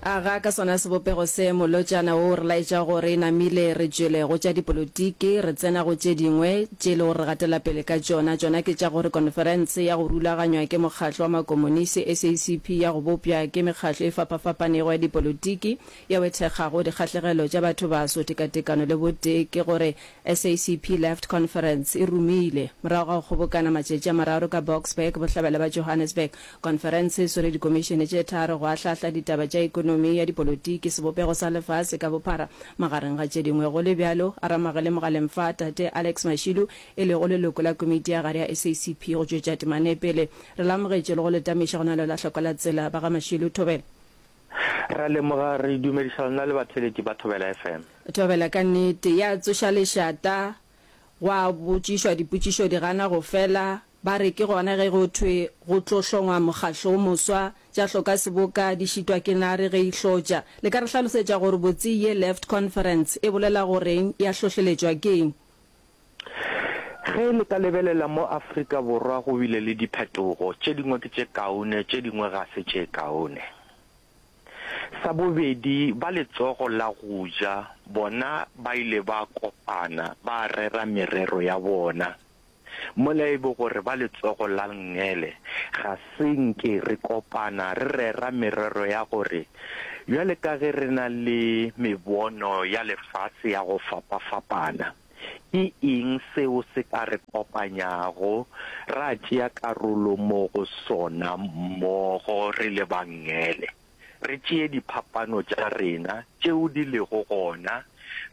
Aga ka sona sebopego se, molotšana wo o re laetša go re namile re tšwele go tša dipolotiki, re tsena go tše dingwe tše e le gore re gatela pele ka tšona, tšona ke tša gore konferense ya go rulaganywa ke mokgatlo wa makomonisi, SACP, ya go bopša ke mekgatlo e fapafapanego ya dipolotiki yeo e thekgago dikgahlegelo tša batho baso, tekatekano le botee, ke gore SACP Left Conference e rumile, morago ga go kgobokana matšatši a mararo ka Boksburg, bohlabela bja Johannesburg, Konferense e swere dikomišene tše tharo go ahlahla ditaba tša ekonomi ya dipolotiki, sebopego sa lefase ka bophara, magareng ga tše dingwe. Go le bjalo, a ramagele mogaleng fa, Tate Alex Mashilu, e lego leloko la komiti ya gare ya SACP go tšwetša temana e pele. Re le amogetše le go le tamiša go na le la hloko la tsela. Ba ga Mashilu, Thobela. Re a leboga. Re dumediša lona le batheeletši ba Thobela FM. Thobela, Ka nnete, ya tsoša lešata. Gwa botšišwa dipotšišo di gana go fela. Ba re ke gona ge go thwe go tlo hlongwa mokgatlo o moswa, tša hloka seboka di šitwa ke nare ge e hlotša. Le ka re hlalosetša gore botse ye Left Conference e bolela goreng, ya hlohleletšwa ke'ng? Ge le ka lebelela mo Afrika Borwa go bile le diphetogo, tše dingwe ke tše kaone, tše dingwe ga se tše kaone. Sa bobedi, ba letsogo la go ja bona ba ile ba kopana ba rera merero ya bona. Mola e be gore ba letsogo la Lngele ga se nke re kopana re rera merero ya gore bjale ka ge re na le mebono ya lefase ya go fapafapana, ke eng seo se ka re kopanyago ra tšea karolo mo go sona mmogo re le Bangele. Re tšee diphapano tša rena tšeo di lego gona,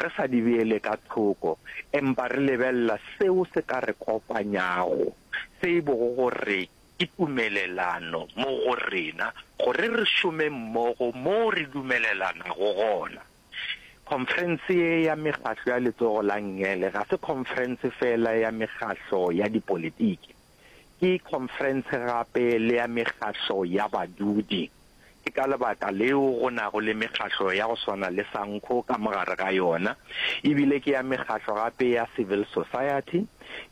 re sa di beele ka thoko, empa re lebelela seo se ka re kopanyago, se e bogo gore ke tumelelano mo go rena gore re šome mmogo moo re dumelelanago gona. Khonferense ye ya Mekgahlo ya Letsogo la Ngele ga se khonferense feela ya mekgahlo ya dipolitiki. Ke khonferense gape le ya mekgahlo ya badudi. Ke ka lebaka leo go nago le mekgahlo ya go swana le SANCO ka mogare ga yona. E bile ke ya mekgahlo gape ya civil society,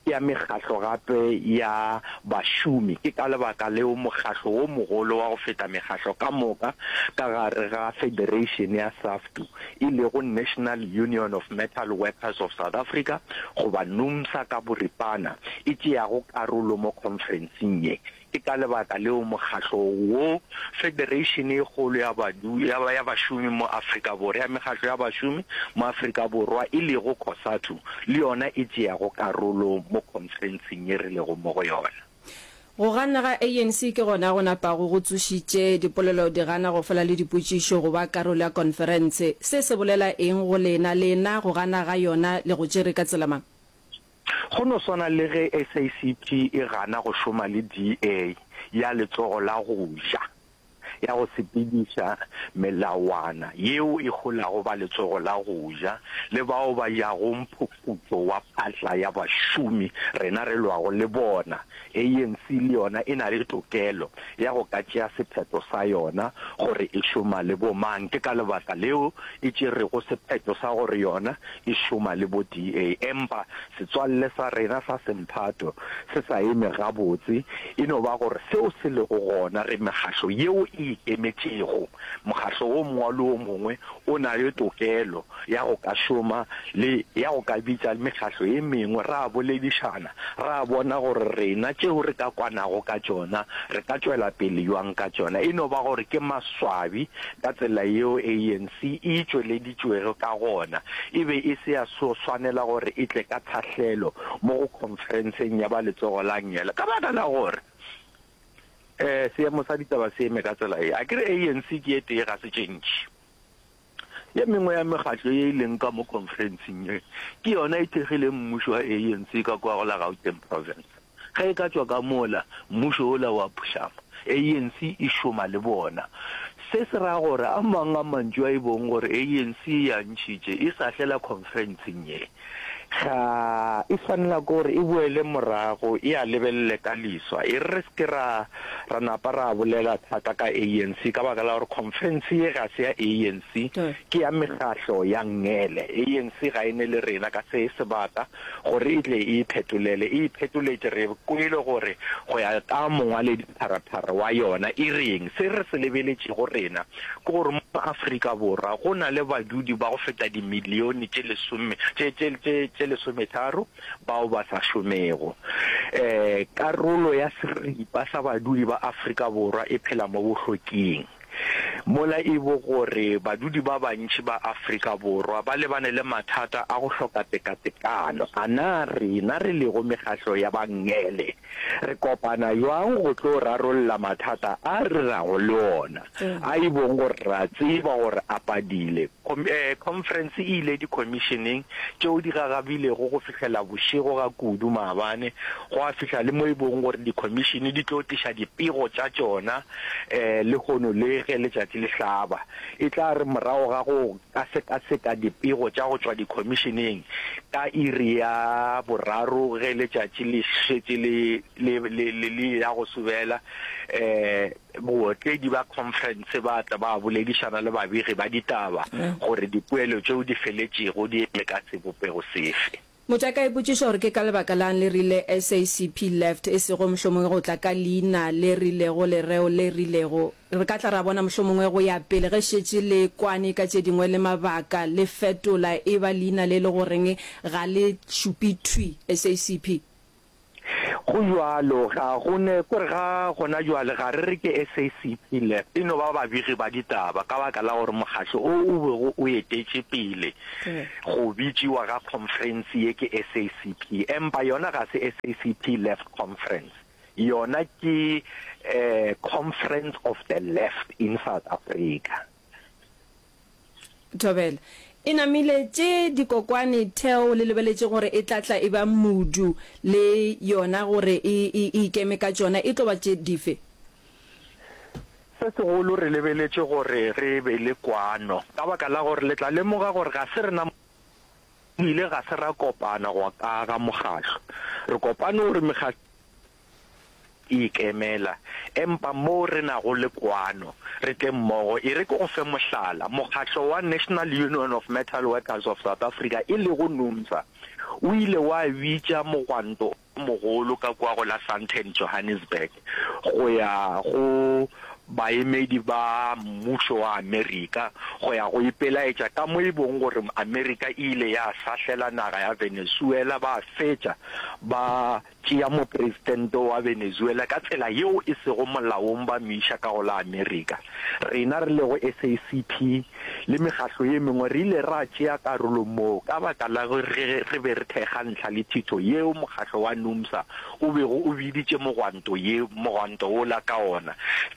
ke ya mekgahlo gape ya bašomi. Ke ka lebaka leo mokgahlo wo mogolo wa go feta mekgahlo ka moka ka gare ga federation ya SAFTU. e lego National Union of Metal Workers of South Africa, goba Numsa ka boripana, e tšeago karolo mo khonferenseng ye. Ke ka lebaka leo mokgatlo wo, Federeishene e kgolo ya badu, ya, ya bašomi mo Afrika Borwa, ya mekgatlo ya bašomi mo Afrika Borwa, e lego Cosatu, le yona e tšeago karolo mo khonferenseng ye re lego mo go yona. Go ganna ga ANC ke gona go napago go tsošitše dipolelo di gana go fela le dipotšišo go ba karolo ya konferense. Se se bolela eng go lena? Lena go gana ga yona le go tšere ka tsela mang? Go no swana le ge SACP e gana go šoma le DA ya letsogo la go ja. ya go sepediša melawana yeo e holago ba letsogo la go ja le bao ba jago mphufutšo wa phatla ya bašomi rena re lwago le bona. ANC le yona e na le tokelo ya go ka tšea sephetho sa yona gore e šoma le bo mang. Ke ka lebaka leo e tšerego sephetho sa gore yona e šoma le bo DA empa Setswalle sa rena sa semphato se sa eme gabotse e no ba gore seo se lego gona re mekgahlo yeo e ikemetšego. Mokgahlo o mongwe le o mongwe o na le tokelo ya go ka šoma le ya go ka bitša mekgahlo e mengwe ra boledišana ra bona gore rena tšeo re ka kwanago ka tšona re ka tšwela pele bjang ka tšona. E no ba gore ke maswabi ka tsela yeo ANC e e tšweleditšego tšweleditšwego ka gona e be e se ya swanela gore e tle ka thahlelo mo go khonferenseng ya ba letsogo la ngele ka baka la gore um seemo sa ditaba se eme ka tsela e a ke re anc ke e tee ga se tše ntši ye mengwe ya megatlo ye e leng ka mo khonferenseng ye ke yona e thekgileng mmušo wa anc ka kwa go la gauteng province Ge e ka tšwa ka mola, mmušo wola wa phušama. ANC e šoma le bona. Se se ra gore a mang a mantšu a e bong gore ANC e a ntšhitše e sa hlela khonferentseng ye, ga e swanela ke gore e boele morago e a lebelele ka liswa e re re se ke ra ra napa ra bolela thata ka ANC ka baka la gore khonferense ye ga se ya ANC, ke ya mekgahlo ya ngele. ANC ga e ne le rena ka se sebaka gore e tle e iphetolele, e iphetoletše. Re kwele gore go ya ka mongwaledi-pharaphara wa yona e reng. Se re se lebeletšego rena ke gore mo Afrika Borwa go na le badudi ba go feta dimilione tše lesome, tše, tše, tše, tše lesometharo bao ba sa šomego. Karolo ya seripa sa badudi ba Afrika Borwa e phela mo bohloking. Mola e bo gore badudi ba bantši ba Afrika Borwa ba lebane le mathata a go hloka tekatekano. A na rena re lego mekgahlo ya bangele re kopana bjang go tlo rarolla mathata a re nago le ona? A e bong gore re a tseba gore a padile. Khonferense e ile dikhomisheneng tšeo di gagabilego go fihlela bošego ga kudu maabane, gwa fihla le mo e bong gore dikhomishene di tlo tliša dipego tša tšona Lehono le ge letšatši le hlaba, e tla re morago ga go ka sekaseka dipego tša go tšwa dikhomišeneng ka iri ya boraro ge letšatši le šetše le le le le le ya go subela, bootledi ba khonferense ba tla ba boledišana le babegi ba ditaba gore dipoelo tšeo di feletšego di eme ka sebopego sefe. Motša ka ipotšiša gore ke ka lebaka la'ng le rile SACP left e sego mohlomongwe go tla ka leina le rilego, lereo le rilego. Re ka tla ra bona mohlomongwe go ya pele ge šetše le kwane ka tše dingwe le mabaka le fetola e ba leina le le go reng ga le šupe thwi, SACP. Go bjalo, ga go ne, ko re ga gona bjale ga re re ke SACP le e no ba babegi ba ditaba ka baka la gore mokgatlo o o bego o etetše pele go bitšiwa ga khonferense ye ke SACP, empa yona ga se SACP Left Conference, yona ke Conference of the Left in South Africa. Thobela. E namile tše dikokwane Theo le lebeletše gore e tla tla e ba mudu le yona gore e ikeme ka tšona e tlo ba tše dife? Se segolo re lebeletše gore re be le kwano ka baka la gore le tla lemoga gore ga se rena mo ile ga se ra kopana go ka aga mokgahlo. Re kopane gore mekgahlo e ikemela, empa moo re nago le kwano, re tle mmogo. E re ke go fe mohlala, mokgatlo wa National Union of Metal Workers of South Africa, e lego Numsa, o ile wa bitša mogwanto o mogolo ka kua go la Sandton, Johannesburg, go ya go baemedi ba mmušo wa Amerika go ya go ipelaetša ka mo e bong gore Amerika e ile ya sahlela naga ya Venezuela ba fetša ba Tšea mopresidente wa Venezuela ka tsela yeo e sego molaong ba mo iša ka go la Amerika. Rena re lego SACP le mekgatlo ye mengwe re ile ra tšea karolo moo ka baka la ge re be re thekga ntlha le thitho yeo mokgatlo wa NUMSA o bego o biditše mogwanto ye mogwanto wola ka ona.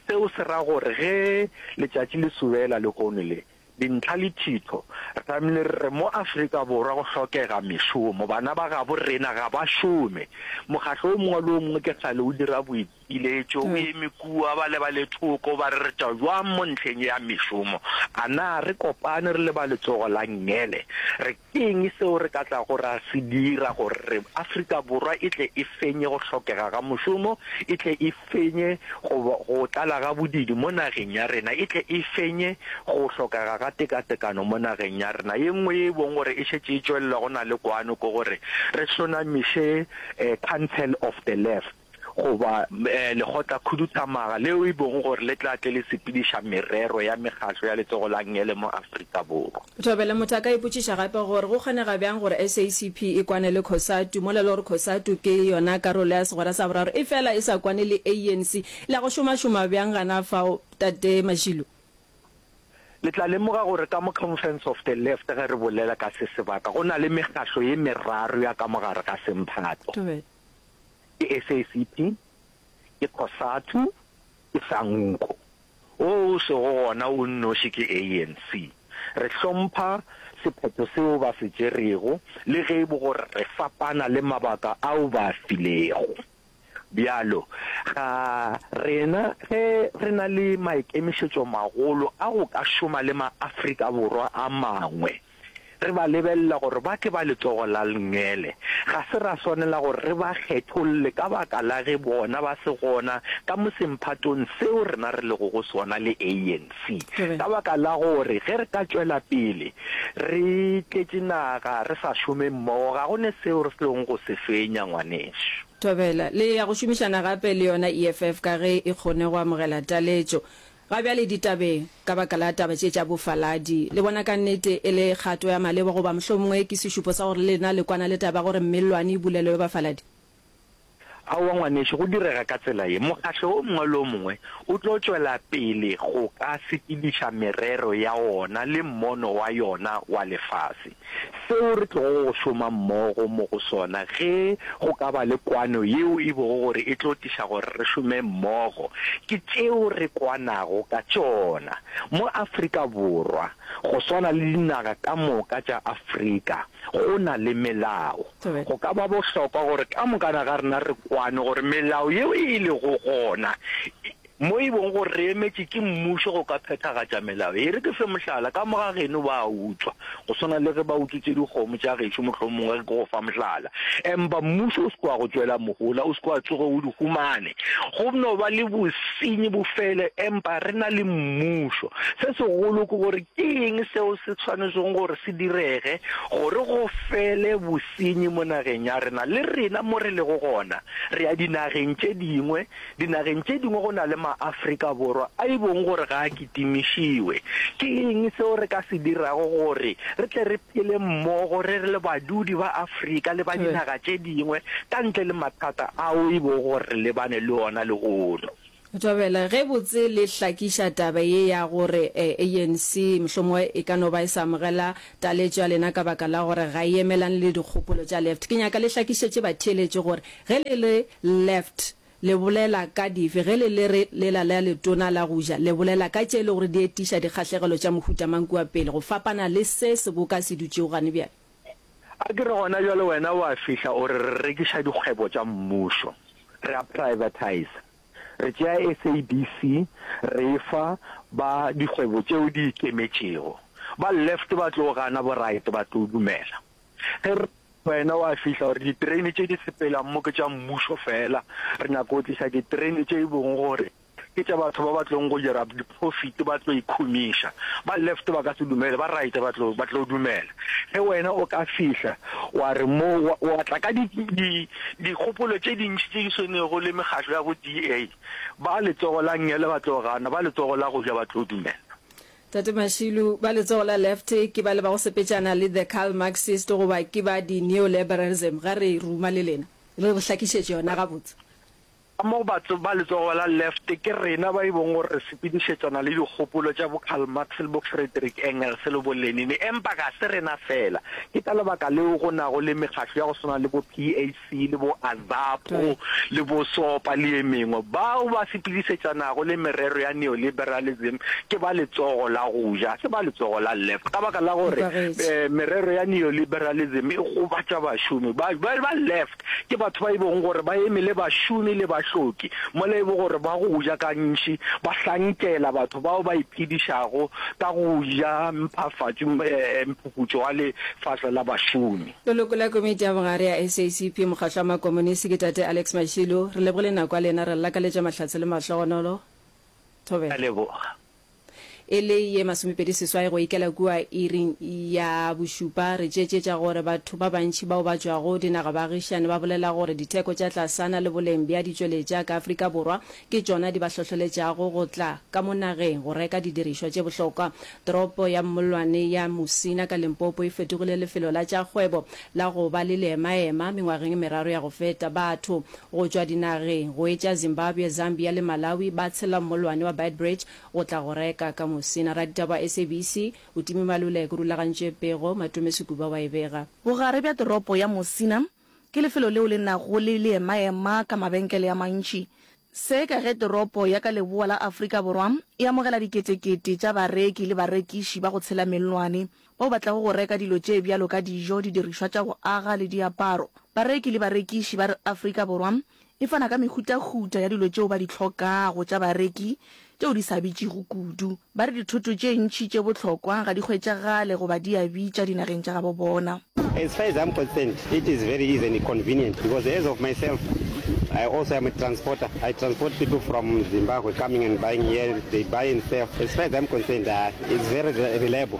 Seo se ra gore ge letšatši le sobela lehono le Dintlha le thitho. Re tlamehile re re mo Afrika Borwa go hlokega mešomo. Bana ba gabo rena ga ba šome. Mokgatlo o mongwe le o mongwe ke sale o dira boipiletšo, o eme kua, ba lebale thoko, ba re re tšwa bjang mo ntlheng ya mešomo. A na re kopane re le ba letsogo la Ngele re. Ke eng seo re ka tlago ra se dira gore Afrika Borwa e tle e fenye go hlokega ga mošomo, e tle e fenye go, go tlala ga bodiidi mo nageng ya rena, e tle e fenye go hlokega ga tekatekano mo nageng ya rena? Ye nngwe ye e bong gore e šetše e tšwelela go na le kwano ke gore re hlonamiše um Council of the Left. goba eh, lekgotlakhuduthamaga leo e bong gore le tla tle le sepediša merero ya mekgatlo ya letsogo la ngele mo aforika borwa Thobela motho a ka ipotšiša gape gore go kgonega bjang gore SACP e kwane le Cosatu mola e le gore Cosatu ke yona karolo ya segwera sa boraro e fela e sa kwane le ANC. Le a go šomašoma bjang gana fao Tate Mashilo? le tla lemoga gore ka mo conference of the left ge re bolela ka se sebaka go na le mekgatlo ye meraro ya ka mogare ga semphato Thobela. ke SACP, ke Cosatu, ke Sanco. O o sego gona o nnoši ke ANC. Re hlompha sephetho seo ba se tšerego le ge e bo gore re fapana le mabaka ao ba a filego. Bjalo ga rena ge re na le maikemišetšomagolo a go ka šoma le maAfrika Borwa a mangwe. Re ba lebelela gore ba ke ba letsogo la lngele. Ga se ra swanela gore re ba kgetholle ka baka la ge bona ba se gona ka mo semphatong seo rena re lego go sona le ANC. Ka baka la gore ge re ka tšwela pele re tletše naga re sa šome mmogo, ga go ne seo re tlong go se fenya, ngwanešu. Thobela, Le ya go šomišana gape le yona EFF ka ge e kgone go amogela taletšo? Ga bjale ditabeng, ka baka la taba tše tša bofaladi, le bona ka nnete e le kgato ya maleba goba mohlomongwe ke sešupo sa gore lena le kwana le taba ya gore mellwane e bulelelwe bafaladi? Aowa, ngwanešu, go direga ka tsela ye. Mokgahlo o mongwe le o mongwe o tlo tšwela pele go ka sepediša merero ya ona le mmono wa yona wa lefase. Seo re tlogo go šoma mmogo mo go sona, ge go ka ba le kwano yeo e bogo gore e tlo tliša gore re šome mmogo, ke tšeo re kwanago ka tšona. Mo Afrika Borwa, go swana le dinaga ka moka tša Afrika, go na le melao. Go ka ba bohlokwa gore ka mokana ga rena re kwane gore melao yeo e lego gona Mo e bong gore re emetše ke mmušo go ka phethagatša melao. E re ke fe mohlala, ka moga geno ba a utswa, go swana le ge ba utswitše dikgomo tša gešo, mohlomongwe re ke go fa mohlala. Empa mmušo o se ke wa go tšwela mohola, o se ke wa tsoga o di humane. Go no ba le bosenyi bo fele, empa re na le mmušo. Se segolo ke gore ke eng seo se swanetšego gore se direge gore go fele bosenyi mo nageng ya rena? Le rena mo re lego gona, re ya dinageng tše dingwe, Dinageng tše dingwe go na le maAfrika Borwa a e bong gore ga a kitimišiwe. Ke eng seo re ka se dirago gore re tle re phele mmogo re le badudi ba Afrika le ba dinaga tše dingwe ka ntle le mathata ao e bong gore re lebane le ona lehono? Thobela, Ge botse le hlakiša taba ye ya gore ANC mohlomongwe e ka no ba e sa amogela Taletšo ya lena ka baka la gore ga e emelane le dikgopolo tša left. Ke nyaka le hlakišetše batheeletši gore ge le le left le bolela ka dife, ge le le re lela la letona la go ja le bolela ka tše e lego gore di etiša dikgahlegelo tša mohuta mang kua pele go fapana le se seboka se dutšego gane bjale. A ke re gona bjale wena o a fihla o re re rekiša dikgwebo tša mmušo, re a privatiza. re tšea SABC re e fa ba dikgwebo tšeo di ikemetšego. Ba left ba tlo gana, bo right ba tlo dumela. Ge re wena wa fihla gore diterene tše di sepelang mo ke tša mmušo fela, re nyaka go tliša diterene tše e bong gore ke tša batho ba ba tlong go dira Profit ba tlo ikhumiša. Ba left ba ka se dumele, ba right ba tlo ba tlo dumela. Ge wena o ka fihla wa re mo wa wa tla ka di di dikgopolo tše dintši tše di swenego le mekgatlo ya bo DA, ba letsogo la ngele ba tlo gana, ba letsogo la go ja ba tlo dumela. Tate Mashilu, ba letsogo la left ke bale ba go sepetšana le the Karl Marxist goba ke ba di neoliberalism? Ga re ruma le lena, le re hlakišetše yona gabotse. Ka mo batho ba letsogo la left ke rena ba e bong gore re sepedišetsana le dikgopolo tša bo Karl Marx le bo Frederick Engels le bo Lenin, empa ga se rena feela. Ke ka lebaka leo go nago le mekgatlo ya go swana le bo PAC le bo AZAPO le bo SOPA le ye mengwe. Bao ba sepedišetsanago le merero ya neoliberalism ke ba letsogo la go ja, ga se ba letsogo la left, ka baka la gore merero ya neoliberalism e gobatša bašomi ba left. Ke batho ba e bogo gore ba emele bašomi le bahloki mola e bo gore ba go ja ka ntši, ba hlankela batho bao ba iphedišago ka go ja mphafatšo, mphufutšo wa lefase la bašomi. Leloko la Komiti ya Bogare ya SACP, Mokgatlo wa Makomonisi, ke Tate Alex Mashilo. Re lebogile nako ya lena, re le lakaletša mahlatse le mahlogonolo. Thobela. Re a leboga. E le ye masomepedi seswai go ikela kua iring ya bošupa, re tšeetšetša gore batho ba bantši bao ba tšwago dinaga baagišane ba bolela gore ditheko tša tlasana le boleng bja ditšweletša ka Afrika Borwa ke tšona di ba hlohleletšago go tla ka mo nageng go reka didirišwa tše bohlokwa. Toropo ya mmollwane ya Musina ka Limpopo e fetogile lefelo la tša kgwebo la go ba le leemaema mengwageng e meraro ya go feta. Batho go tšwa dinageng go etša Zimbabwe, Zambia le Malawi ba tshela mmollwane wa Beitbridge go tla go reka ka Musina. Raditaba wa SABC o time malulek o rulagantše pego, Matome Sekuba wa e bega. Bogare bja toropo ya Musina ke lefelo leo le nago le leemaema ka mabenkele a mantši. Se ka ge toropo ya ka leboa la Afrika Borwa e amogela diketekete tša bareki le barekiši ba go tshela mellwane bao ba tlago go reka dilo tše bjalo ka dijo, didirišwa tša go aga le diaparo. Bareki le barekiši ba re Afrika Borwa e fana ka mehutahuta ya dilo tšeo ba di hlokago tša bareki tšeo di sa bitšego kudu. Ba re dithoto tše ntši tše bohlokwa ga di hwetšagale goba di a bitša dinageng tša gabo bona. As far as I'm concerned, it is very easy and convenient because as of myself, I also am a transporter. I transport people from Zimbabwe coming and buying here, they buy and sell. As far as I'm concerned, uh, it's very reliable.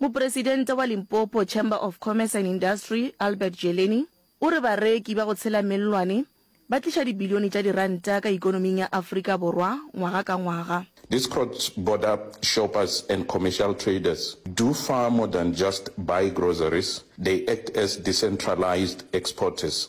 Mopresidente wa Limpopo Chamber of Commerce and Industry, Albert Jeleni, o re bareki ba go tshela mellwane ba tliša dibilione tša diranta ka ikonoming ya Afrika Borwa ngwaga ka ngwaga. These cross-border shoppers and commercial traders do far more than just buy groceries, they act as decentralised exporters,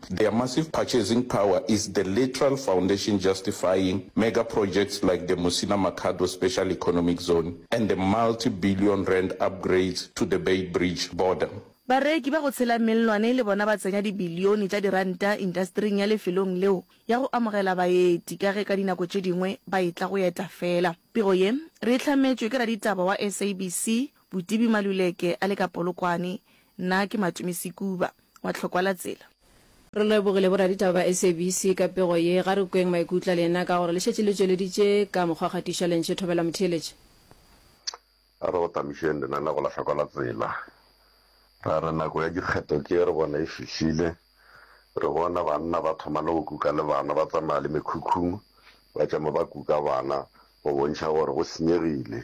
Their massive purchasing power is the literal foundation justifying mega projects like the Musina Makhado Special Economic Zone and the multi-billion rand upgrades to the Beitbridge border. Bareki ba go tshela mellwane le bona ba tsenya dibilione tša diranta intastering ya lefelong leo ya go amogela baeti ka ge ka dinako tše dingwe ba e tla go eta fela. Pego ye re e hlametšwe ke raditaba wa SABC Botibi Maluleke a le ka Polokwane, Nna ke Matumi Sekuba wa Tlhokwalatsela. Re lebogile boraditaba ba SABC ka pego ye. Ga re kweng maikutlo a lena ka gore le šetše le tšweleditše ka mokgwa wa kgatišo ya Lentše Thobela Motheeletši. A re go tamišeng lenaneo la Tlhokwalatsela. Ra re nako ya dikgetho tše re bona e fihlile. Re bona banna ba thoma le go kuka le bana ba tsamaya le mekhukhung ba tšama ba kuka bana go bontšha gore go senyegile.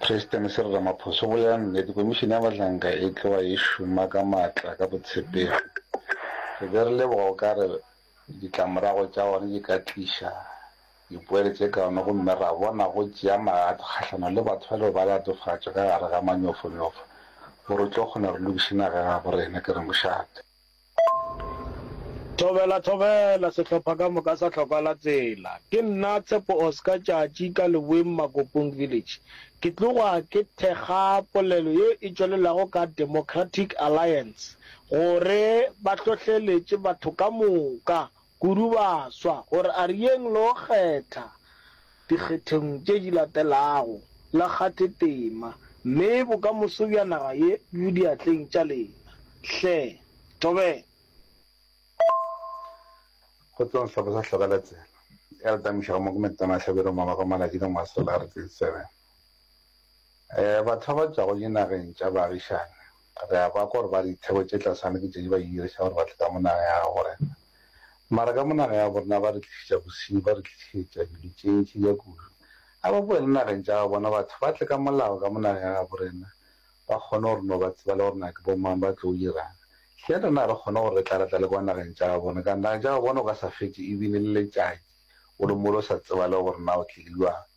President Cyril Ramaphosa o bolela nnete, Komišene ya Bahlanka e tloga e šoma ka matla ka botshepegi. Re be re leboga o ka re ditlamorago tša gona di ka tliša dipoelo tše kaone gomme ra bona go tšea magato kgahlano le batho ba lego ba latofatšwa ka gare ga manyofonyofo gore o tlo kgona re lokiše naga ya gabo rena, ke re mošate. Thobela, Thobela, sehlopha ka moka sa Tlhokwa la Tsela. Ke nna Tshepo Oscar Tšatši ka Leboeng Makopong Village. Ke tloga ke thekga polelo ye e tšwelelago ka Democratic Alliance gore ba hlohleletše batho ka moka Kudu baswa gore a re yeng le go kgetha dikgetheng tše di latelago, le kgathe tema, mme bokamoso bja naga ye bo diatleng tša lena. Hle, tobela. Go tloga sehlopha sa Hloka la Tsela ya Letamišo gammogo Metona Hlabirwa Mamaka Malatjie ka ngwaga wa sekete makgolo a marataro le lesome. Batho ba ba tšwago dinageng tša baagišane, re a kwa gore ba re ditheko tše tlasana ke tše di ba yuyerišago gore ba tle ka mo nageng ya gabo rena. Mara ka mo nageng ya gabo rena ba re tlišetša bosenyi, ba re tlišetša dilo tše ntši ka kudu. A ba boele nageng tša gabo bona, batho ba tle ka molao ka mo nageng ya gabo rena, ba kgone go re no ba tseba le gore na ke bo mang, ba tlo dirang. Hleng rena a re kgone gore re tla, re tla le kwa nageng tša gabo bona? Ka nageng tša gabo bona o ka sa fetše ebine le letšatši o le mo le o sa tseba le gore na o tlile bjang.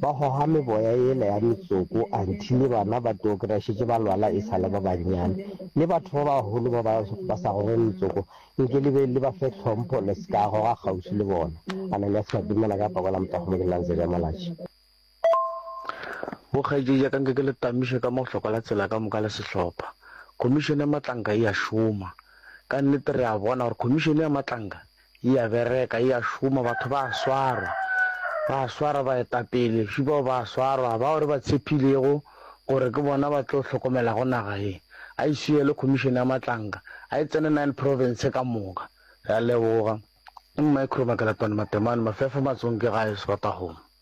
Ba goga meboya yela ya metsoko, anti le bana ba teokria šetše ba lwala e sa le ba bannyane. Le batho ba bagolo ba ba ba sa goge metsoko, nke le be le ba fe tlhompho, le se ka goga kgauswi le bona. Ananiase Madimela ka pako la motago mo ke nnang Zeria Malatji. Bo kgaetšedi ya ka nke ke le tamiše ka mohlokwa la tsela ka moka le sehlopha. Khomišene ya Matlanka e a šoma. Ka nnete re a bona gore Khomišene ya Matlanka E a bereka, e a šoma, batho ba a swarwa. Ba a swarwa baetapele bjši bao, ba a swarwa bao re ba tshepilego gore ke bona ba tlo hlokomelago naga ye. A e swiele Khomišene ya Matlanka, a e tsene Nine Province ka moka. Re a leboga. Mmae Khurumakelatwane Matemane, Mafefo Matsonke gae, Srotahome.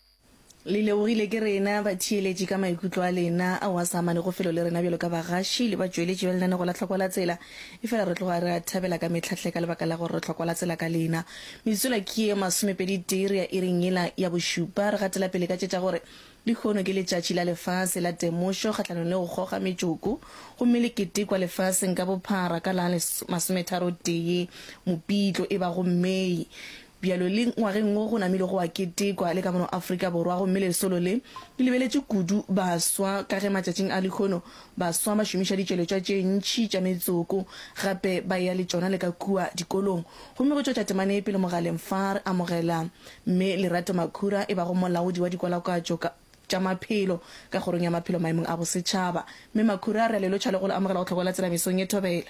Le lebogile ke rena batheeletši ka maikutlo a lena ao a sa amanego felo le rena bjalo ka bagaši le batšweletši bja lenaneo la Tlhokwa la Tsela. Efela re tloga re a thabela ka mehla hle ka lebaka la gore re tlhokwa la tsela ka lena. Metsotswana ke ye masomepeditee re ya iring yela ya bošupa. Re gatela pele ka tše tša gore lehono ke Letšatši la Lefase la Temošo kgahlanong le go goga metšoko gomme le ketekwa lefaseng ka bophara ka la masometharo tee Mopitlo e bago May. Bjalo le ngwageng wo go namile go a ketekwa le ka mono Afrika Borwa gomme lesolo le le lebeletše kudu baswa ka ge matšatšing a lehono baswa ba šomiša ditšweletšwa tše ntši tša metsoko gape ba eya le tšona le ka kua dikolong gomme go tšwetša temana ye pele Mogaleng fa re amogela Mme Lerato Makhura e bago molaodi wa dikwalakwatšo ka tša maphelo ka kgorong ya maphelo maemong a bosetšhaba. Mme Makhura re a le lotšha le go le amogela go Tlhokola Tsela mesong ye thobela.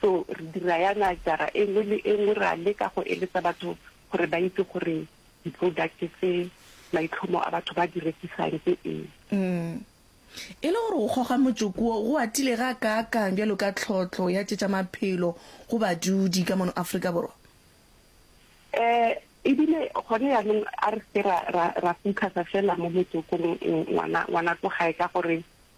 So re dira yana jara e nngwe le e nngwe, re a leka go eletsa batho gore ba itse gore di-product tse maitlhomo a batho ba di rekisang ke eng. Umm. E le gore go goga motsoko wo go atile ga kaakang bjalo ka tlhohlo ya tše tša maphelo go badudi ka mono Afrika Borwa? Ee, e bile gone yanong a re se ke ra, ra, ra focus-a feela mo motsokong, ngwana, ngwana ko gae, ka gore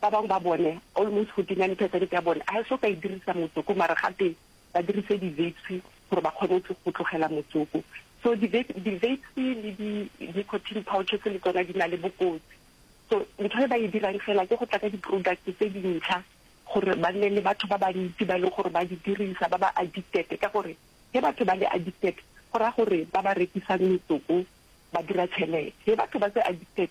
Ba bangwe ba bone, almost 49 percent ya bone, ha e so ka e dirisa motsoko mara gate ba dirise di-vapes gore ba kgone go tlogela motsoko. So di-vapes le di-nicotine pouches le tsona di na le bokotsi. So ntho e ba e dirang fela ke go tla ka di-product tse dintsha gore ba nne le batho ba bantsi ba e leng gore ba di dirisa, ba ba addicted. Ka gore ge batho ba le addicted go raya gore ba ba rekisang metsoko ba dira tšhelete. Ge batho ba se addicted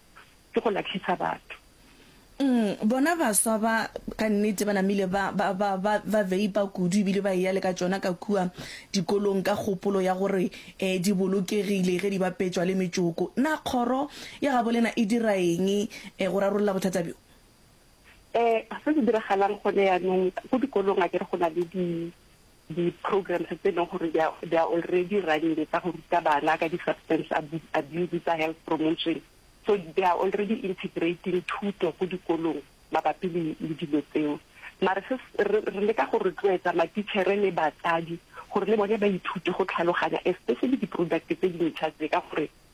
ke go lahlisa batho. Umm bona baswa ba ka nnete ba namile ba ba ba ba ba veipa kudu ebile ba eya le ka tšona ka kua dikolong ka kgopolo ya gore eh di bolokegile ge di bapetšwa le metšoko. Na kgoro ya gabo lena e dira eng eh go rarolla bothata bjo? Eh se se diragalang gone yanong go dikolong akere go na le di di-programs tse e leng gore they are, they are already running tsa go ruta bana ka di-substance abu- abuse tsa health promotion so they are already integrating thuto ko dikolong mabapi le le dilo tseo mare se s- re re leka go rotloetsa matichere le batsadi gore le bone ba ithute go tlhaloganya especially di-product tse dintšha tse ka gore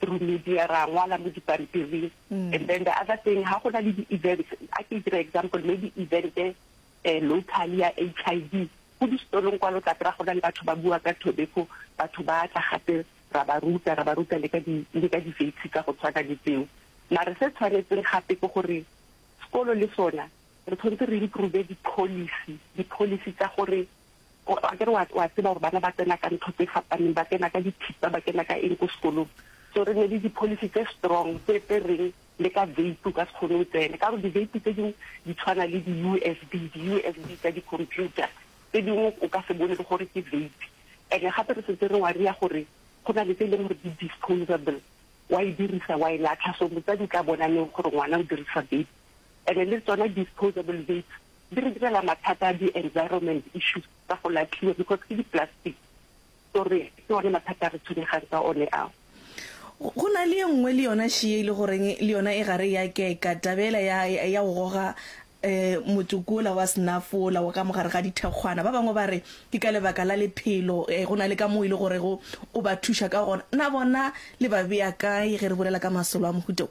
through media ra ngwala mo dipampiring and then the other thing ha go na le di-events a ke dira example maybe event um local ya HIV ko di-stolong kwa lo tla kry-a go na le batho ba bua ka tobacco batho ba tla gape ra ba ruta ra ba ruta le ka di le ka di-vapes tsa go tshwana le tseo mare se tshwanetseng gape ke gore sekolo le sona re tshwanetse re improve di-policy di-policy tsa gore Akere wa, wa tseba gore bana ba tsena ka ntho tse fapaneng, ba kena ka dithipa, ba kena ka eng ko sekolong. So re ne le di-policy tse strong tse, tse reng le ka vape o ka se kgone o tsene, ka gore di-vape tse dingwe di tshwana le di-U_S_B, di-U_S_B tsa di-computer tse dingwe o ka se bone le gore ke vape. And-e gape re setse re worry-a gore go na le tse e leng gore di-disposable, wa e dirisa wa e latlha, so motsadi o tla bona neng gore ngwana o dirisa vape. and le tsona disposable vapes di re direla mathata a di environment issues tsa go latlhiwa because ke di plastic so re ke one mathata a re tshwenyegang ka one ao. Go na le ye nngwe le yona she e le goreng le yona e gare ya keka tabela ya ya go goga um motsoko ola wa snuff ola wa ka mogare ga dithekgwana ba bangwe ba re ke ka lebaka la lephelo um go na le ka mo e le gore go o ba thuša ka gona na bona le ba bea kae ge re bolela ka masolo a mohuta o.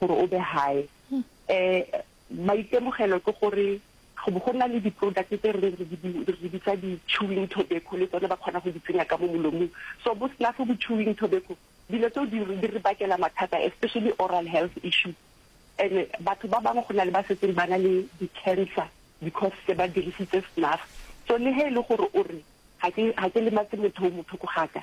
gore o be high um maitemogelo ke gore go bo go na le di-product tse re re di bitsa di-chewing tobacco le tsone ba kgona go di tsenya ka mo molomong so bo sena fo bo-chewing tobacco dilo tseo di re bakela mathata especially oral health issues and batho ba bangwe go na le ba setseng ba na le di-cancer because se ba dirisitse snuff so le he e le gore o re ga ke lematse motho o motho ko gaka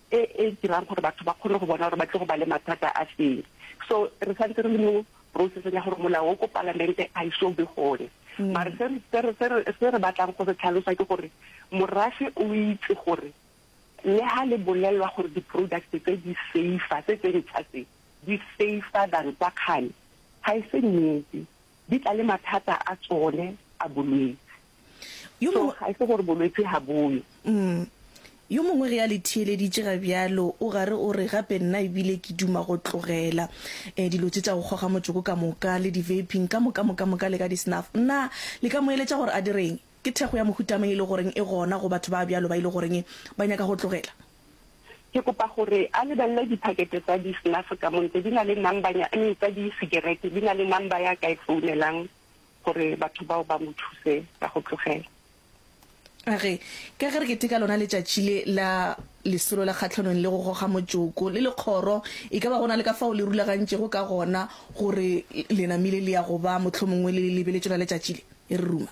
e e dirang gore batho ba kgone go bona gore ba tle go ba le mathata a feng. So re santse re le mo processeng ya gore molao o ko palamente a iso be gone. Mare se re- se re- se re- se re batlang go se tlhalosa ke gore morafe o itse gore le ha le bolelwa gore di-products tse di safer tse tse ntšha tse di safer than tsa kgale ga e se nnete. di tla le mathata a tsone a bolwetsi. Yo So mongwe, ga e se gore bolwetsi ga boyo. mm, yo mongwe ge a le theeleditše ga bjalo, o gare o re, Gape nna e bile ke duma go tlogela eh, dilo tše tša go kgoga motsoko ka moka, le di-vaping ka moka moka moka le ka di-snuff. Na le ka mo eletša gore a direng? Ke thekgo ya mohuta mang e le goreng e gona go batho ba bjalo ba e le goreng ba nyaka go tlogela? Ke kopa gore a lebelele diphakete tsa di-snuff ka mo ntle. Di na le number nya, I mean tsa di-cigarette di na le number ya ka e founelang gore batho bao ba mo thuse ka go tlogela. A re, Ka ge re keteka lona letšatši le la Lesolo la Kgahlanong le go Goga Motšoko, le le kgoro, e ka ba go na le ka fao le rulagantšego ka gona gore le namile le ya go ba, mohlomongwe le le lebeletše lona letšatši le? E re ruma.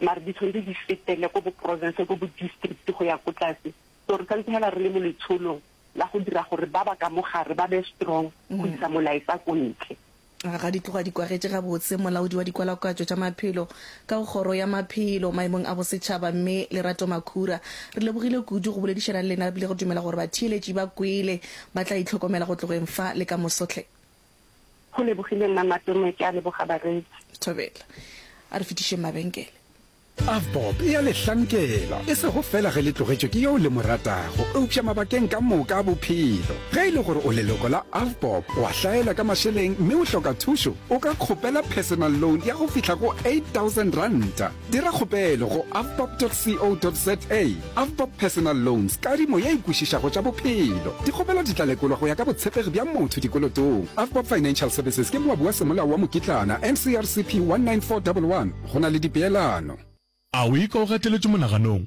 mare di tshwanetse di fetele ko boprovense, ko bodistrict go ya ko tlase. So re santse hela re le mo letsholong la go dira gore ba ba ka mo gare ba be strong go isa molaetsa ko ntle. A ga di tloga di kwagetše gabotse molaodi wa dikwalakwatšo tša maphelo ka go Kgoro ya Maphelo Maemong a Bosetšhaba, Mme Lerato Makhura. Re lebogile kudu go boledišana le lena re bile re dumela gore batheeletši ba kwele ba tla itlhokomela go tlogeng fa le ka moso hle. Go lebogile Mma Matome, ke a leboga bareetsi. Thobela. A re fetišeng mabenkele. Avbob e a le hlankela, e sego fela ge le tlogetšwe ke yo le mo ratago, eupša mabakeng ka moka a bophelo. Ge e le gore o leloko la Avbob, o a hlaelwa ka mašeleng mme o hloka thušo, o ka kgopela personal loan ya go fihla go R8000. Dira kgopelo go avbob.co.za Avbob Personal Loans, kadimo ye e kwešišago tša bophelo. Dikgopelo di tla lekolwa go ya ka botshepegi bja motho dikolotong. Avbob Financial Services ke moabi wa semolao wa mokitlana, NCRCP 19411. Go na le dipeelano. A o e ka o gateletšwe monaganong?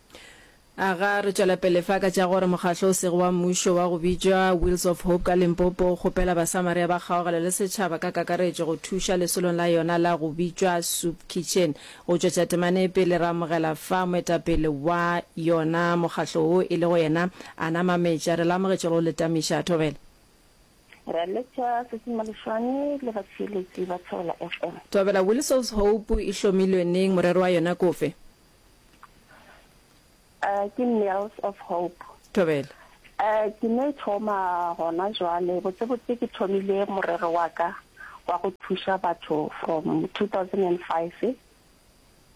Aga re tšwela pele fa ka tša gore mokgatlo o sego wa mmušo wa go bitšwa Wheels of Hope ka Limpopo o kgopela Basamaria ba kgaogelo le setšhaba ka kakaretšo go thuša lesolong la yona la go bitšwa Soup Kitchen. Go tšwetša temane pele re amogela fa moetapele wa yona mokgatlo wo e lego yena Ana Mameja. Re le amogetše go le tamiša. A thobela. Ra letša Sesi Malešwane le batšheeletši ba Thobela FM. Thobela, Wheels of Hope e hlomilwe neng? Morero wa yona ke ofe? Uh, ke Nails of Hope. Thobela. Uh, ke ne thoma gona jwale botsebotse ke thomile morero wa ka wa go thuša batho from 2005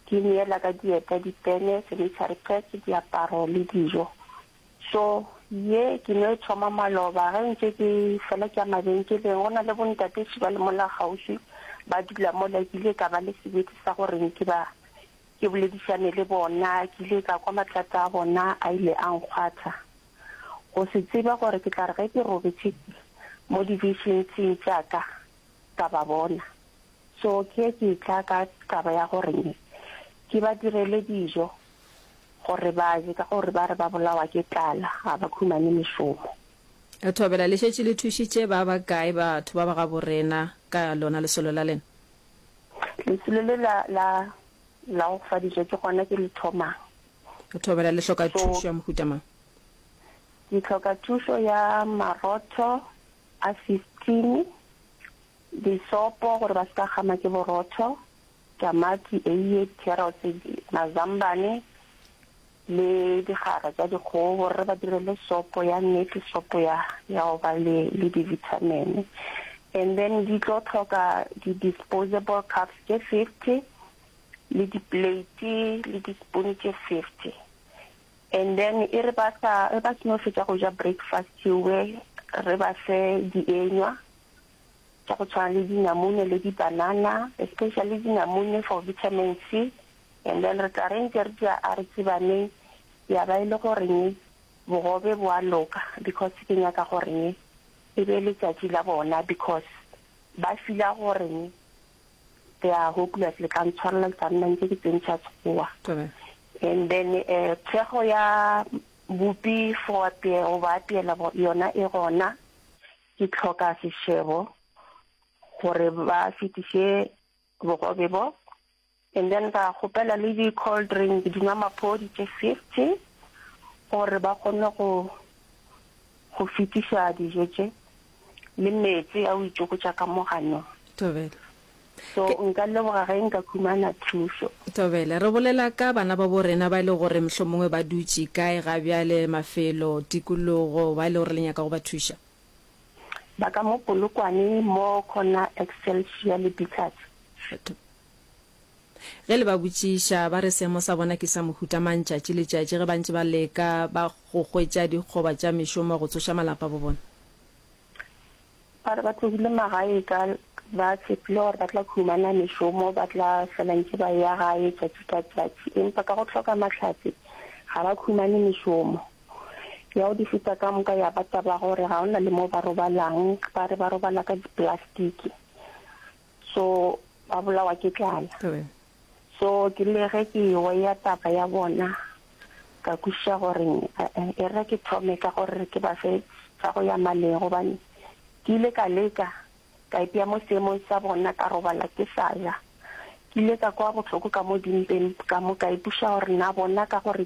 ke neela ka dieta dipene sanitary pads diaparo le dijo so ye ke ne thoma maloba ge ntse ke fela ke ya mabenkeleng go na le bontatesi ba le mola gaufi ba dula mo lekile ka ba le sebete sa gore ke ba Ke boledišane le bona, ke ile ka kwa matlata a bona a ile a nkgwatha. Go se tseba gore ke tla re ge ke robetše mo divišinsing tša ka, ka ba bona. So ke ye ke etla ka taba ya gore ke ba direle dijo gore ba je ka gore ba re ba bolawa ke tlala, ga ba khumane mešomo. Re thobela le šetše le thušitše ba bakae batho ba ba gabo rena ka lona lesolo la lena? Lesulo le la, la, la go fa dijo ke gona ke le thomang. O thobela le hloka So- thušo ya mohuta mang? Ke tlhoka thušo ya marotho a 15, disopo gore ba se ka kgama ke borotho, tamati, eiye, carrots, mazambane, le digara tša dikgogo gore re ba direle sopo ya nnete, sopo ya ya go ba le le dibithamene. And then di tlo tlhoka di-disposable cups tše fifty le di-plate le di-spoon tše fifty. And then e re ba sa e ba seno fetša go ja breakfast we re ba fe dienywa tša go tshwana le dinamune le di-banana, especially dinamune for vitamin C. and then re tla reng tše re tšea a re tsebaneng ya ba e le goreng bogobe bo a loka because ke nyaka goreng e be letšatši la bona because ba fila goreng they are hopeless le tla ntshwarela ke tla nna ntse ke tsentšha sekgowa and then um thekgo ya bupi for apea go ba apeela yona e gona ke tlhoka sešebo gore ba fetiše bogobe bo and then ka kgopela le di cold drink di nwa maphodi tše fifty gore ba kgone go go fitiša dijo tše le metsi a o itšokotša ka mogano tobela so nka leboga ge nka khumana thuso tobela re bolela ka bana ba bo rena ba e le gore mohlomongwe ba dutše kae ga bjale mafelo tikologo ba e le gore le nyaka go ba thuša ba ka mo Polokwane mo Corner Excelsior le Bicaz. Kgetho. Ge le ba botšiša, ba re seemo sa bona ke sa mohuta mang tšatši le tšatši ge ba ntše ba leka ba go hwetša dikgoba tša mešomo go tsoša malapa bo bona? Ba re ba tlogile magae ka ba tshepile gore ba tla humana mešomo, ba tla fela ntše ba ya gae tšatši ka tšatši empa ka go hloka mahlatse ga ba humane mešomo. ya go di feta ka moka ya ba taba ya gore ga ona le mo ba robalang ba re ba robala ka diplastiki so ba bolawa ke tlala so ke le ge ke ewa ya taba ya bona ka kwiša gore eh, e re ke thome ka gore ke ba fe sa go ya maleng gobane ke ile ka leka ka ipea mo seemong sa bona ka robala ke sa ja ke ile ka kwa botlhoko ka mo dimpeng ka mo ka ipuša gore na bona ka gore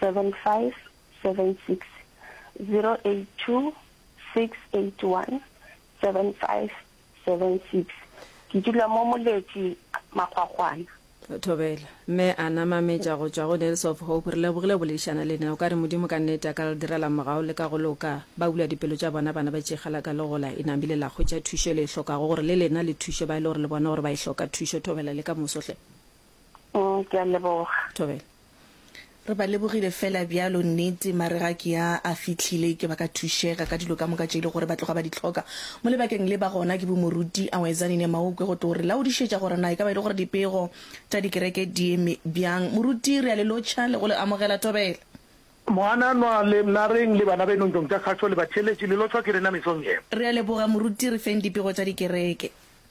08576 ke dula mo moletši makgwakgwana. Thobela. Mme a na mametša go tšwa go Nails of Hope, re lebogile go boledišana le na. O ka re Modimo ka nnete a ka re direla mogau le ka go loka. Ba bula dipelo tša bona bana ba tšeigala ka legola e na bile la hwetša thušo e le e hlokago gore le lena le thuše ba e le gore le bona gore ba e hloka thušo. Thobela le ka moso hle. Mm, ke a leboga. Thobela. Re ba lebogile fela bjalo nnete mare ga ke ya a fitlhile ke ba ka thušega ka dilo ka moka tše e le gore ba tloga ba di tlhoka mo lebakeng le ba gona ke bomoruti a wezane ne maokwe go tlo re laodišetša gore na e ka ba e le gore dipego tša dikereke di eme bjang moruti re a le lotšha le go le amogela thobela Moananwa le mna reng le bana beno ntong tša kgašo le batheeletši le lotšhwa ke rena mesong ye. Re a leboga moruti re feng dipego tša dikereke.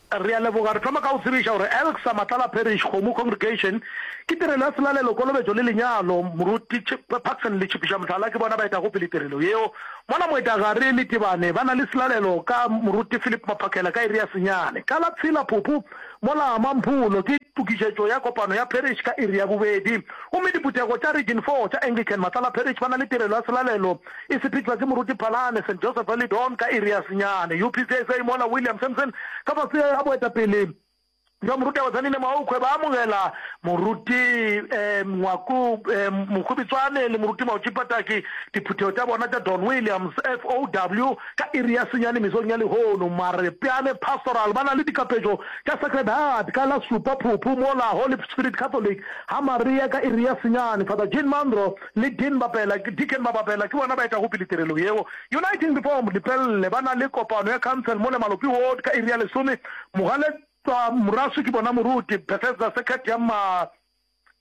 Re a leboga. Re thoma ka go tsebiša gore Elksa Matlala Parish, Kgomo Congregation, ke tirelo ya selalelo, kolobetšo le lenyalo. Moruti Paxson le Tšhipiša Mohlala ke bona ba etago pele tirelo yeo. Mola Moetagare Letibane ba na le selalelo ka Moruti Philip Maphakela ka iri ya senyane. Ka la tshela Phuphu mola Mampholo ke tokišetšo ya kopano ya parish ka iri ya bobedi. Gomme diphuthego tša Region Four tša Anglican Matlala Parish ba na le tirelo ya selalelo e sephetšwa ke Moruti Phalane, St Joseph Early Dawn ka iri ya senyane, UPC sa Imola William Simpson ka fase ga boetapele bja Moruti Abatsanine Maokgwe ba amogela Moruti um Ngwaku um Mokgobitswane le Moruti Maotši Pataki diphuthego tša bona tša Don Williams FOW ka iri ya senyane mesong ya lehono. Marepeane Pastoral ba na le dikapetšo tša Sacred Heart ka la supa Phuphu mola Holy Spirit Catholic ga Maria ka iri ya senyane. Father Jean Mandro le Dean Bapela, Deacon Babapela, ke bona ba etago pele tirelo yeo. Uniting before Lepelle ba na le kopano ya council mo Lemalopi ward ka iri ya lesome. Mogaletswa Morasu ke bona moruti, Bethesda Circuit ya ma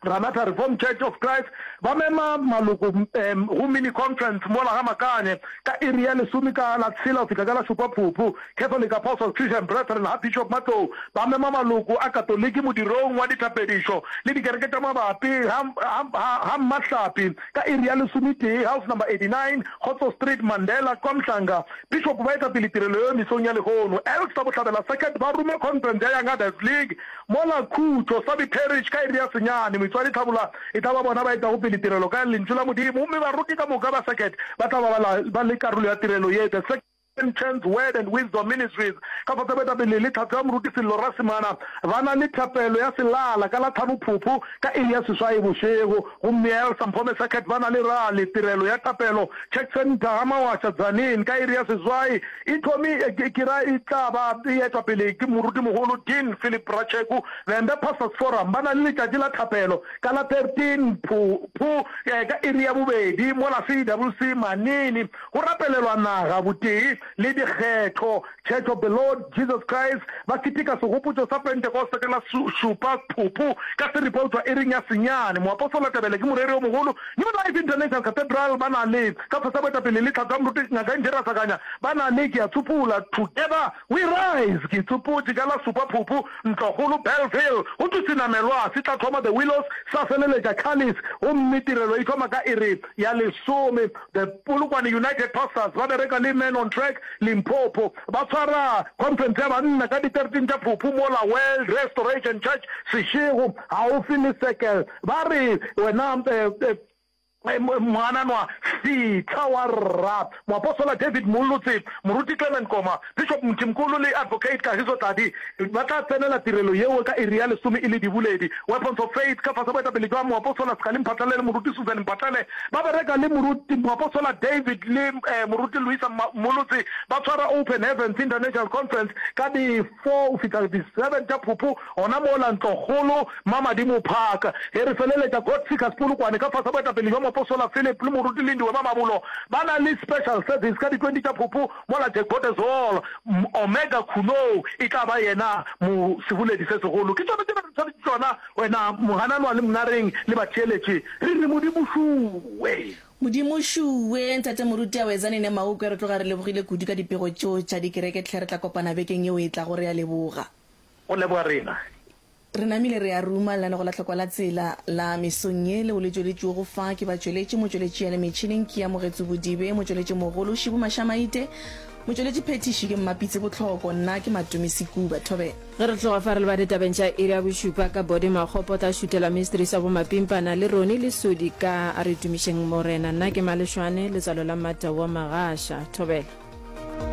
Ranatha Reformed Church of Christ ba mema maloko go mini conference mola ga Makane ka iri ya lesome ka la tshela go fihla ka la šupa Phuphu. Catholic Apostles Christian Brethren ga Bishop Matlou ba mema maloko a Katoliki modirong wa dithapedišo le dikereke tša mabapi ga ga Mmahlapi ka iri ya lesometee, House Number 89, Kgotso Street, Mandela, KwaMhlanga. Bishop ba etapele tirelo yeo mesong ya lehono. Elks tša Bohlabela Circuit ba ruma Conference ya Young Adults League mola Khutšo, Sabi Parish, ka iri ya senyane. Moitšoadi Tlhabula e tla ba bona ba etago pele tirelo ka Lentšu la Modimo, gomme baroki ka moka ba circuit ba tla ba ba le karolo ya tirelo ye. The King James Word and Wisdom Ministries ka fase ba etapele le Tlhahlo ya Moruti Sello Rasimana ba na le thapelo ya selala ka la tlhano phopho ka iri ya seswaye bošego gomme ya Elsa Mphome Circuit ba na le rally tirelo ya thapelo Church Centre ga Mawasha Tzaneen ka iri ya seswaye e thomi ke ra e tla ba e etwa pele ke Moruti Mogolo Dean Philip Ratshegu Vhembe Pastors Forum ba na le letšatši la thapelo ka la 13 phopho ka iri ya bobedi mo la CWC Manini Go rapelelwa naga, botee, le dikgetho. Church of the Lord Jesus Christ ba keteka Segopotšo sa Pentekoste ka la šupa Phupu ka se repoutwa iring ya senyane. Moapostola Tebele ke moreri o mogolo. New Life International Cathedral ba na le Sefo sa Boetapele le Tlhatho ya Moruti Ngaka Nje Rasakanya ba na le Ke a Tsupola, Together We Rise. Ke tsopotše ka la supa Phupu, Ntlokgolo, Bellville. Go thwe senamelwa se tla thoma The Willows sa feleletša Chalice gomme tirelo e thoma ka iri ya lesome. The Polokwane United Pastors ba bereka le Men on Track Limpopo. Ba swara khonferense ya banna ka di 13 tša Phuphu mola World Restoration Church Seshego gaufi le Circle. Ba re, Wena moananwa, fitlha wa rra. Moapostola David Mollo Tsebe, moruti Clement Koma, Bishop Mthimkhulu le Advocate Kagiso Tladi ba tla tsenela tirelo yeo ka iri ya lesome e le diboledi. Weapons of Faith ka fase boetapele jwa Moapostola Sgale Mphatlele le Moruti Susan Mphatlele ba bereka le Moruti Moapostola David le Moruti Luisa Mmolotsi ba tshwara Open Heavens International Conference ka di 4 go fihla di 7 tša Phuphu gona mola Ntlokgolo, Mmamadimo Park. Ge re feleletša God Seekers Polokwane ka fase boetapele jwa Moapostola Philip le Moruti Lindiwe Mamabulo ba na le Special Service ka di 20 tša Phuphu. Mola Tekotezool, Omega Khunoo, e tla ba yena mo seboledi se segolo. Ke tšona tše ba re tshwanetše tšona, wena mogananwa le monareng le batheeletše. Re re Modimo šuwe! Modimo šuwe! Ntate Moruti Awezani ne Maukwe, re tloga re lebogile kudu ka dipego tšo tša dikereke tlhe. Re tla kopana bekeng yeo e tlago. Re a leboga. Go leboga rena. Re namile re ya Ruma, lenaneo go la tlhoko la tsela la mesong ye leo le tšweletšwego fa ke batšweletši, motšweletši ya le metšhineng ke ya Mogetsu Bodibe, motšweletšimogolo Shibu Mashamaite, motšweletši phethiši ke Mmapitse Botlhoko, nna ke Matumi Sekuba Thobela. Ge re tloga fa re lebale tabeng tša iri ya bošupa ka Body Makgopa o tla šutela Mysteries wa Bomapimpana le Ronnie Lesodi ka A re tumišeng Morena. Nna ke Malešwane, letswalo la Mmata wa Magasha. Thobela.